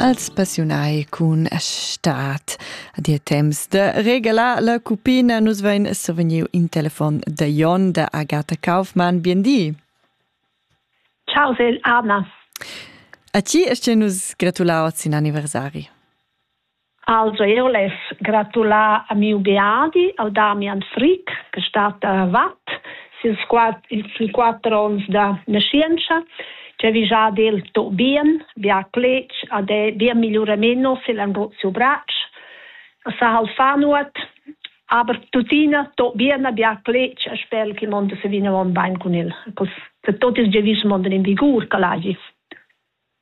als passiunai cun stat a dir temps de regala la cupina nus vein sovegniu in telefon de Jon de Agatha Kaufmann biendì Ciao Sil Anas A ti est nus gratulau sin anniversari Also eu less gratular a miu beadi, al Damian Frick, che stat a Watt, sils quat, sui quatter ons da nascienza, che vi già del to bien, bia clec, ad è bia migliurameno se l'andrò siu bracc, sa hal fanuat, aber tutina to bien a bia clec e spel che monde se vina on bain con il, cos se tot il gevis monde in vigur che l'agis.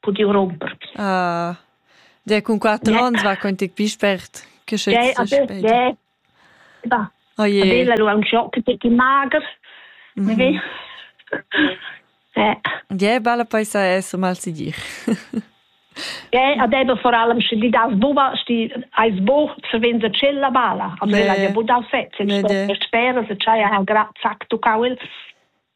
pudiu romper. Ah, der cun quater onns va quanti più spert che se spet. Oh je. Bella lu aunc schock che ti mager. Mhm. Ja, bella paisa è so mal si dir. Ja, ad eben vor allem schon die das Buba sti als Bo zu wenn se chella bala. A me la ja bu da fetz, ich sto sperre se c'hai ha gra zack du kaul.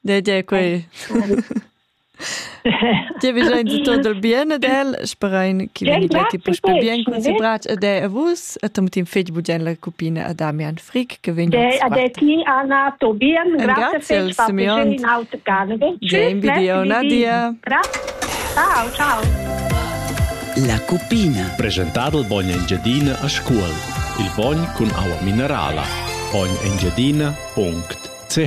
De de quei. Ti vi già tutto del bien ed el sperain che veniva che pus per bien con si brach ed è a vus e tam tin fetg bugen la cupina a Damian Frick che vegn De a de ti Anna Tobien grazie fetg per Simeon in aut Carnival. James Video Nadia. Ciao ciao. La cupina. Presentado il bogno Engiadina a scuol. Il bogn con aua minerala. Bogn Engiadina.ch